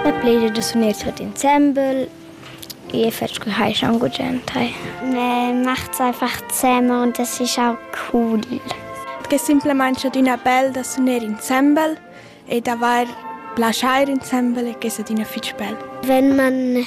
La plegia da suner tuot insembel. Gie fetsch cu hai schon gugent hai. Ne macht einfach zemmer und das ist auch cool. Che simplemente adina bel da suner insembel e d'avair plaschair insembel e che è adina fitg bel. Wenn man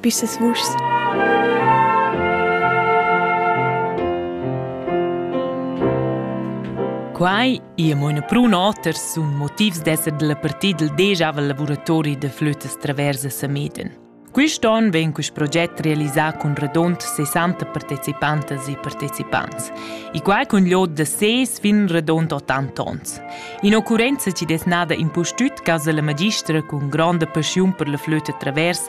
pisas vuschs. Quai è mo una prun oter sun motivs d'esser della partida del deja lavuratori de flötas traversa Sameden. Quist on vegn quist proget realisà cun radont 60 partecipantas e partecipants e quai cun l'od da ses fin radont 80 ons. In occurrenza ci des nada impustüt casa la magistra cun gronda paschiun per la flöta travers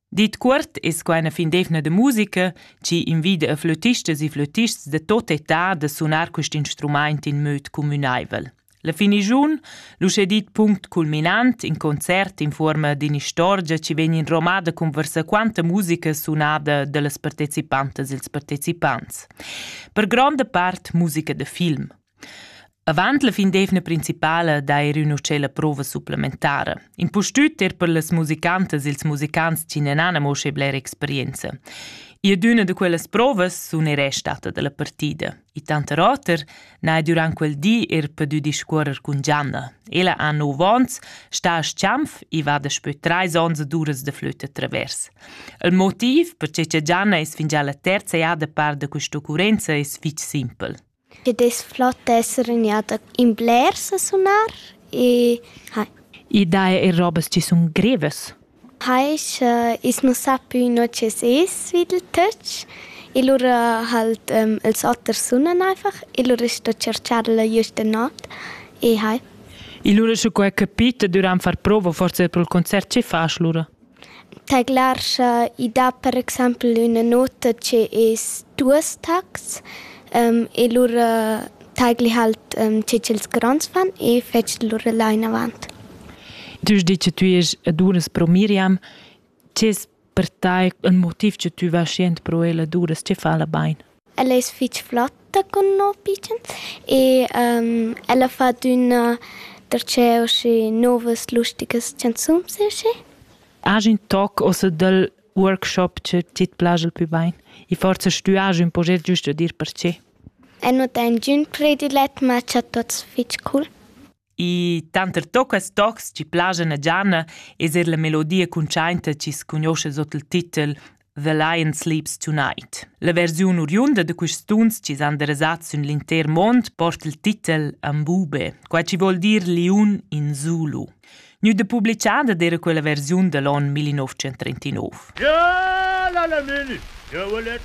Dit cuort es quai üna findevna da musica chi invida a flötistas e flötists da tot età da sunar quist instrumaint in möd cumünaivel. La finigiun, l'uschè dit punct culminant, in concert in fuorma d'inistorgia chi vegn inromada cun varsaquanta musica sunada da las partecipantas e'ls partecipants. Per gronda part musica da film. Avant la fin d'eivna principala d'eir ün uschè la prova supplementara. Impustüt er per las musicantas ils musicants chi nen han amo schi blera experienza. Ir d'üna da quellas provas sun er stata da la partida. I tanter oter n'ha durant quel di er pudü discuorrer cun Gianna. Ella ha 9 ons, sta a Schianf e va daspö trais ons ad uras da flütta travers. Il motiv perche cha Gianna es fingià la terza jada par da quist'occurrenza es fich simpel. Che dess flot esser ün'eada in blers a sunar e hai. I dà eir robas chi sun grevas. Hai scha i's nu sa pü no chi's es svid il töch e lura halt ils oters sunan einfach e lura sto tscherchar-la güsta not e hai. E lura scu hai capit e dürant far prova forsa pro'l concert chi fasch lura? Tadlar scha i dat per exaimpel üna nota che es duos tacs e lura tagli halt che ch'els gronds fan e fetsch lura là inavant. Tu has dit che tü est a duras pro Miriam. Che es per tai ün motiv che tü vas jent pro ella duras? Che fa la bain? Ella es fich flatta cun no pitschens e ella fa adüna darcheu uschi novas lusticas chanzuns e uschi. Agen toc ossa dal workshop che tit plascha il pü bain? I forsa stü agen ün proget giüst da dir perche? Eu nu dà ingün predilet, ma cha tuots fich cul. I tanter toccas tocs chi plaschan a Gianna es eir la melodia cuntschainta chi's cugnuoscha sot il titel The Lion Sleeps Tonight. La versiun oriunda da quists tuns chi s'han derasats sün l'intер mond porta il titel Ambube, qua chi vuol dir liun in Zulu. Gnü da publichada d'eira quella versiun da l'on 1939. Ja, la la mini, ja, la la